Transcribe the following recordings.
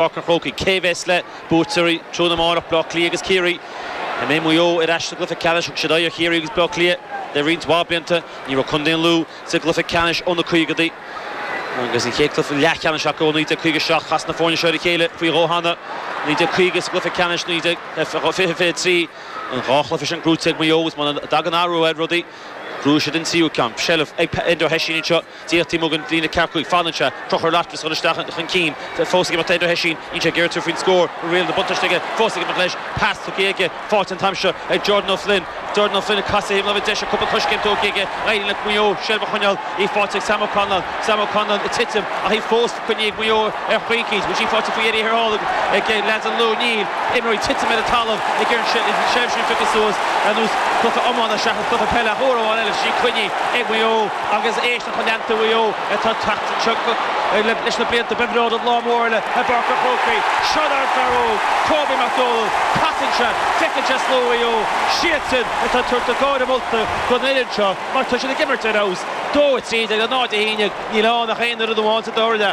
Páirc an Chrócaigh, cé a bheas le buaiteoirí an chluiche amárach, Bleá Cliath agus Ciarraí? An mbeidh Maigh Eo ar ais sa gcluiche ceannais? Thug siad aghaidh ar Chiarraí agus Bleá Cliath le roinnt mhaith blianta. Ní raibh contae an Lú sa gcluiche ceannais ó na caogadaí agus an chéad chluiche leathcheannais acu ó 1957. Chas na foirne seo ar a chéile faoi dhó cheana, 1950 sa gcluiche ceannais 1923. An dá chluiche sin buaite ag Maigh Eo agus muna dtagann athrú ar rudaí, buafaidh siad an tríú ceann. Seilbh ag Enda Hession anseo. D'fhéadfaí muga an bhliain a cearcú ag fanann sé píosa ar leataobh is dhul isteach chun cinn fós aige mar tá Enda Hession níl sé ag iarraidh tabhairt faoin scór go rialta buntáiste aige fós aige amach leis pas tugtha aige faighte an t-am seo ag Jordan Flynn Jordan Flynn ag casadh thaobh na láimhe deise cúpla coiscéim tógtha aige éiríonn le Maigh Eo seilbh a choinneáil í faighte ag Sam Callinan Sam Callinan ag titim ach í fós Coinnithe ag Maigh Eo ar chaoi eicínt. Í faighte faoi Eddie Hearnóg ag leaids an Lú. Tá imreoirí ag titim ar an talamh ag iarraidh seilbh a phiocadh suas, ar nós cluiche iomána seachas cluiche peile ach uair amháin eile í coinnithe ag Maigh Eo agus éist le lucht leanta Mhaigh Eo atá ag teacht anseo leis na blianta. Beidh an lá mór eile i bPáirc an Chrócaigh. Seo é an fear óg, Kobe Mac Dónaill. Casann sé, feiceann sé slua Mhaigh Eo. Siadsan atá ag tabhairt na gáire molta don fhoireann seo mar tá siad ag imirt ar fheabhas. 2-3 de 0-1. Níl ann ach aon rud amháin sa tóir le.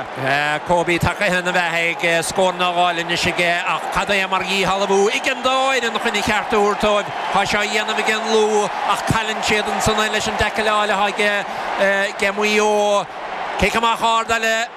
Kobe tagtha ina bheatha ag scór nó dhó fáilte anois aige ach cad é mar dhíshealbhú ag an dá fhoireann chun a gceart a thabhairt dóibh. Tá sé á dhéanamh ag an Lú ach cailleann siad í ansan leis an dtaicil áille atá aige Maigh Eo. Cic amach ard eile.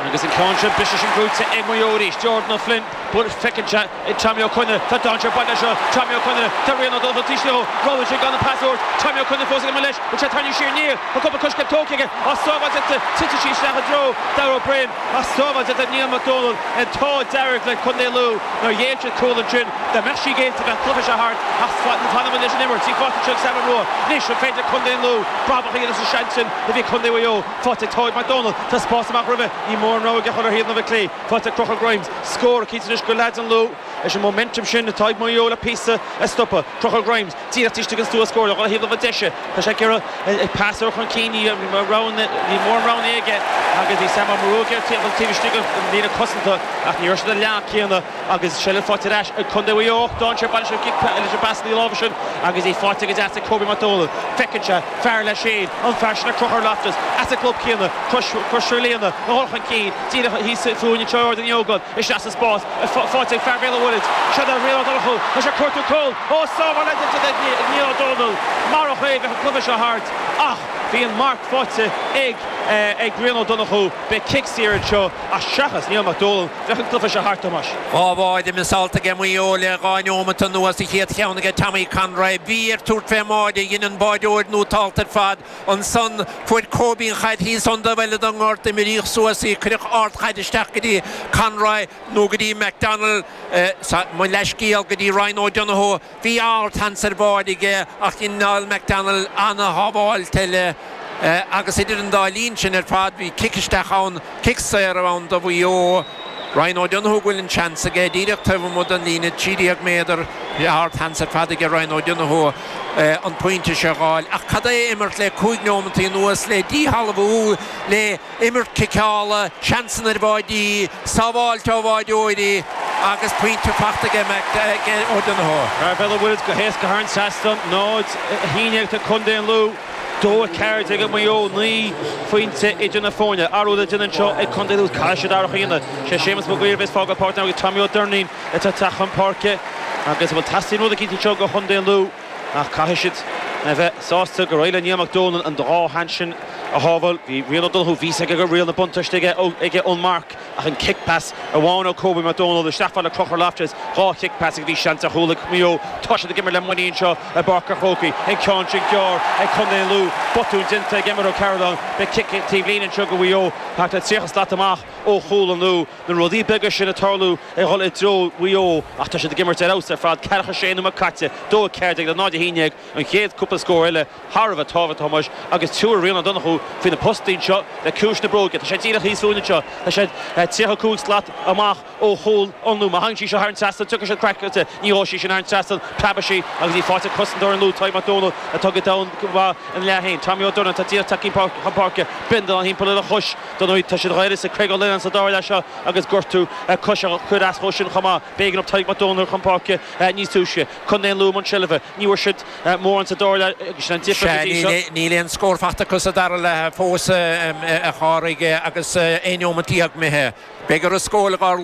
Agus an ceann seo buaite ag Maigh Eo arís. Jordan Ó Floinn, thall, feiceann sé. ag Tommy Conroy, tá an-spás aige seo, Tommy Conroy, tá Rian Ó Donnchú taobh leo, roghnaíonn sé gan an pas a thabhairt, Tommy Conroy fós ag imeacht leis, bhuail sé trasna siar aniar, tá cúpla coiscéim tógtha aige, an tsábháil déanta, titeann sí isteach i dtreo Darragh Beirne, an tsábháil déanta ag Niall Mac Dónaill, an t-ádh dearg le Contae an Lú nár ghéill siad cúl ansin, dá mbeadh sí géillte bheadh an cluiche seo thart ach fanann muid leis an imirt, í faighte seo ag Sam Mulroy, anois an féidir le Contae an Lú brabach a dhéanamh as an seans sin a bhí ag Contae Mhaigh Eo, faighte ag Tadhg Mac Dónaill, tá spás amach roimhe, níl mórán rogha aige ach a chur ar thaobh na clé. Faighte ag Conor Grimes. Scór eicínt anois ag Contae an Lú leis an momentum sin atá ag Maigh Eo le píosa a stopadh. Conor Grimes díreach taobh istigh den stua scóir ar thaobh na láimhe deise. Tá sé ag iarraidh í a phasáil chun cinn. Níl mórán roghanna aige agus bhí Sam Mulroy ag iarraidh teacht taobh istigh den líne cosanta ach ní raibh siad ar an leathanach céanna agus seilbh faighte ar ais ag contae Mhaigh Eo ach d'fhan sé an-mhall leis an bpas láimhe sin agus í faighte go deas ag Kobe McDonald. Feiceann sé. fear leis féin an fear sin Conchúr Loftus as an gclub céanna, Crois Mhaoilíona, a chur chun cinn díreach thíos fúinn anseo in Ardán Uí Ógáin isteach sa spás faighte ag fear Bhéal an Mhuirthead, Seán Rian Ó Donnchú, é ag cuartú cúil ó sábháil eile Niall Mac Dónaill marach é bheadh an cluiche seo thart ach bhí an marc faighte ag Rian Ó Donnchú beidh cic saor anseo. Ach seachas Niall Mac Dónall, bheadh an cluiche seo thart, a Thomáis. Dhá bháide miseáilte aige Maigh Eo le dhá neomat anuas, an chéad cheann aige Tommy Conroy. Bhí air tabhairt fén mbáide, dhein an báideoir nó t-alt ar fad ansan. Fuair Kobe an chaid thíos ar an dtaobh eile den ngort imríodh suas í. Cuireadh ard chaid isteach go dtí Conroy nó go dtí McDonnell, sa, mo leathscéal, go dtí Ryan O'Donoghue. Bhí ardsheans ar bháide aige ach dhein Niall McDonnell an-shábháilt eile agus idir an dá línn sin ar fad bhí cic isteach ann, cic saor a bheadh ann do Mhaigh Eo. Ryan O'Donoghue go bhfuil an seans aige díreach taobh amuigh den líne 13 méadar. Ardsheans ar fad aige Ryan O'Donoghue an pointe seo a dh'fháil ach cad é imirt le cúig neomataí anuas le díshealbhú le imirt ciceála, seansanna ar bháidí, sábháilt ó bháideoirí agus pointe faighte aige Maigh Eo. Ó Donnchú á bualadh go héasca thar an trasnán, 0-11 ag Contae an Lú, 2-14 ag Maigh Eo, naoi phointe idir na foirne. Athrú le déanamh anseo ag Contae an Lú, caithfidh siad athrach a dhéanamh. Is é Séamus Mag Uidhir a bheas ag fágáil páirc na himeartha agus Tommy Ó Doirnín atá ag teacht chun páirce agus bhuel teastaíonn rud éicínt anseo go Chontae an Lú? Ach caithfidh siad a bheith sásta gur éirigh le Niall Mac Dónall an dá sheans sin a shábháil. Bhí Rian O'Donoghue bhí a fhios aige go raibh riail na buntáiste aige ón marc ach an cic pas amháin ó Kobe Mac Dónall a shlapfadh le Conchúr Loftus, dhá chic pas agus bhí seans ar chúl ag Maigh Eo tá siad ag imirt le muinín anseo i bPáirc an Chrócaigh. An ceann sin gearr ag Contae an Lú, botún déanta ag Emmet O'Carolan beidh cic taobhlíne anseo go Mhaigh Eo thart ar 30 slat amach ó chúl an Lú, na rudaí beaga sin ag tarlú, ag dhul i dtreo Mhaigh Eo ach tá siad ag imirt ar fheabhas ar fad, ceathracha a sé nóiméad caite, 2:14 le 0:11 an chéad cúpla scór eile thar a bheith tábhachtach, a Thomáis, agus tabharfaidh Rian Ó Donnchú faoi na postaí anseo le ciumhais na bróige. Tá sé díreach thíos fúinn anseo, tá sé 35 slat amach ó chúl an Lú. Má thagann sí seo thar an trasnán tiocfaidh siad craiceáilte, ní ghabhfaidh sí sin thar an trasnán, preabfaidh sí agus í faighte ag cosantóir an Lú, Tadhg Mac Dónaill, atá go domhain, go maith ina leath féin. Tommy Ó Durnin atá díreach tagtha chun páirce, bindealán thimpeall ar a chois. Dar ndóigh, tá siad dh'uireasa Craig Ó Leannáin sa dara leath seo agus gortú coise a chuir as dhó sin chomh maith. B'éigean dóibh Tadhg Mac Dónaill a chur chun páirce níos túisce. Contae an Lú i mbun seilbhe, ní bhfuair siad mórán sa dara leath agus sin an difir go dtí seo. Níl aon scór faighte acu sa dara leath fós, a Phádraig, agus aon neomat déag imithe. Beidh orthu scóráil ag ár.